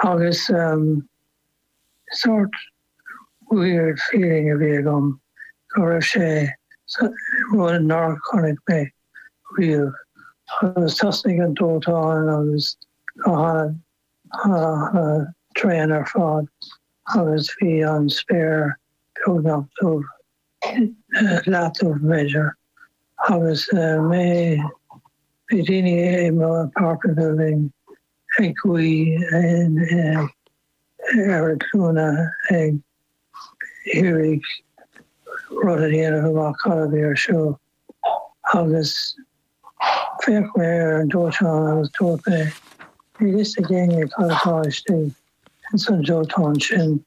Agus sórt weird feeling a bhí agam go raibh sé sa, rud nár chonaic mé riamh. Agus thosnaigh an dóiteán agus go han-an-an-an-an tréan ar fad agus bhí an spéir beagnach dubh, leathdhubh b'fhéidir. Agus mé, bhí daoine i mo apartment building ag guí ar a nglúine ag iarraidh rud a dhéanamh amach cad a bhí ar siúl. Agus d'fhéach mé ar an dóiteán agus dúirt mé, Níl a fhios ag éinne cad atá istigh ins an dóiteán sin.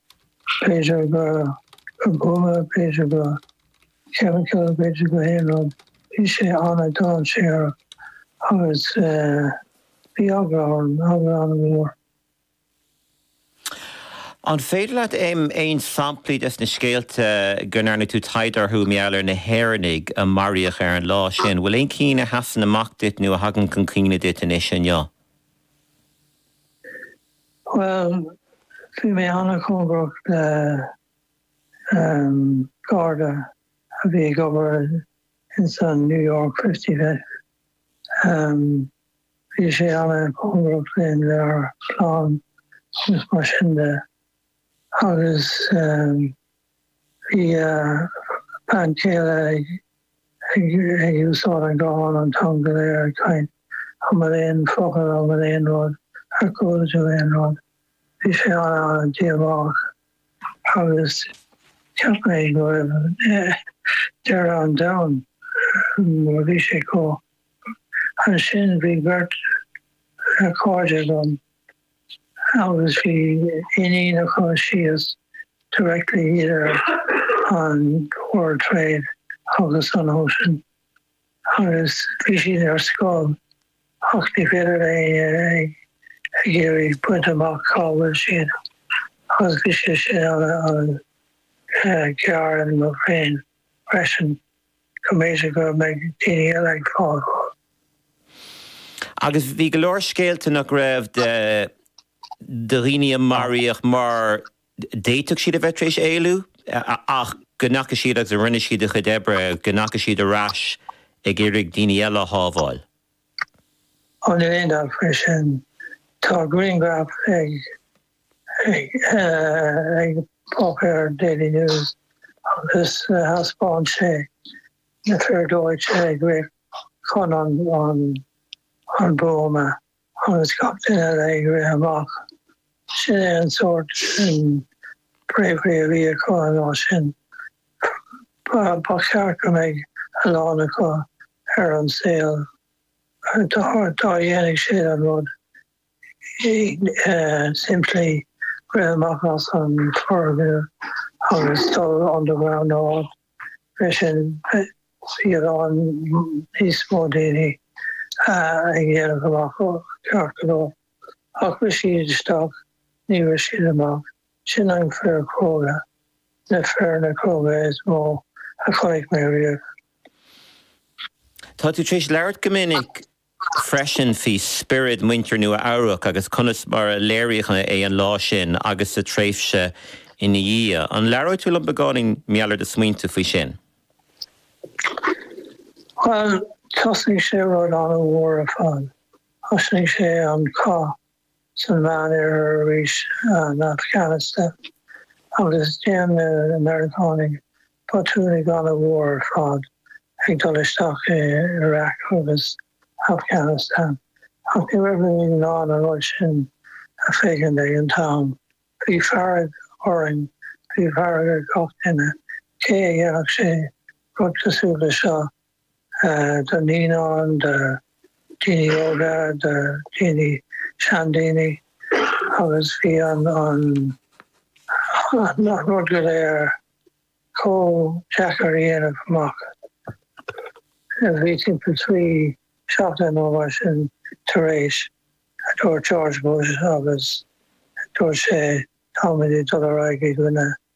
B'fhéidir gur buama, b'fhéidir go. Ceapann sé gur féidir go haon rud, bhí sé an-dainséarach agus bhí eagla orm, eagla an-mhór. An féidir leat aon samplaí des na scéalta go ndearna tú taighde orthu mar gheall ar na hÉireannaigh a maraíodh ar an lá sin, bhfuil aon chinn a sheasann amach duit nó a thagann chun cuimhne duit anois inniu? Bhuel, bhí mé an-chóngarach le. an Garda a bhí ag obair ins an New York Fifty-Fifth. Bhí sé an-chóngarach linn, lenár gclann agus mar sin de. Agus bhí a bhean chéile ag úsáid an ghuthán an t-am go léir ag caint. An bhfuil aon focal, an bhfuil aon rud, ar chuala tú aon rud? Bhí sé an-an-díomách. agus cheap mé go raibh deireadh an domhain ann, bhí sé chomh. Ansin bhí beirt chairde agam agus bhí iníon acu síos directly idir an World Trade agus an Ocean Agus bhí siad ar scoil ach ní féidir le héinne ag iarraidh baint amach cá bhfuil siad agus bhí sé sin an-an-ghéar in mo bhrain freisin go mb'fhéidir go mbeadh daoine eile ag fáil. Agus bhí go leor scéalta nach raibh, de dhaoine a maraíodh mar d'fhéadfadh siad a bheith tar éis éalú ach go ndeachaigh siad agus a rinne siad a gcuid oibre, go ndeachaigh siad ar ais ag iarraidh daoine eile a shábháil. An bhfuil aon scéal faoi sin. Tá grianghraf ag páipéar Daily News agus thaispeáin sé na fir dóiteáin ag rith chun an buama. agus gach duine eile ag rith amach. Sin é an sórt sin bravery a bhí acu an lá sin. Ba cheart go mbeidh a lán acu ar an saol dá ndéanfaidh siad an rud simplí, rith amach as an foirgneamh agus dul underground in áit. freisin, a lán níos mó daoine a dhéanfadh amach go ceart é, ach rith siad isteach, níor rith siad amach. Sin na fir cróga, na fir ba chróga is mó a chonaic mé riamh. Tá tú tar éis labhairt go minic freisin faoi spiorad mhuintir Nua-Eabhrac agus conas mar a léiríodh é an lá sin agus sa tréimhse ina dhiaidh. An labhróidh tú linn beagáinín, Niall, ar do smaointe faoi sin? Bhuel, thosnaigh sé rud an-mhór ar fad. Thosnaigh sé an cath san Mheánoirthear arís, an Afghanistan, agus dhein na Meiriceánaigh botún an-mhór ar fad ag dul isteach i Iraq agus Afghanistan, ach ní raibh muid in ann an rud sin a fheiceáil ag an t-am. Bhí fearg orainn, bhí fearg ar gach duine, cé a dhéanfadh rud cosúil le seo do na daoine, do dhaoine óga, do dhaoine, seandaoine agus bhí an rud go léir chomh deacair a dhéanamh amach is bhí timpeall trí seachtaine nó mar sin tar éis a dúirt George Bush agus dúirt sé tá muid ag dul ar aghaidh i gcoinne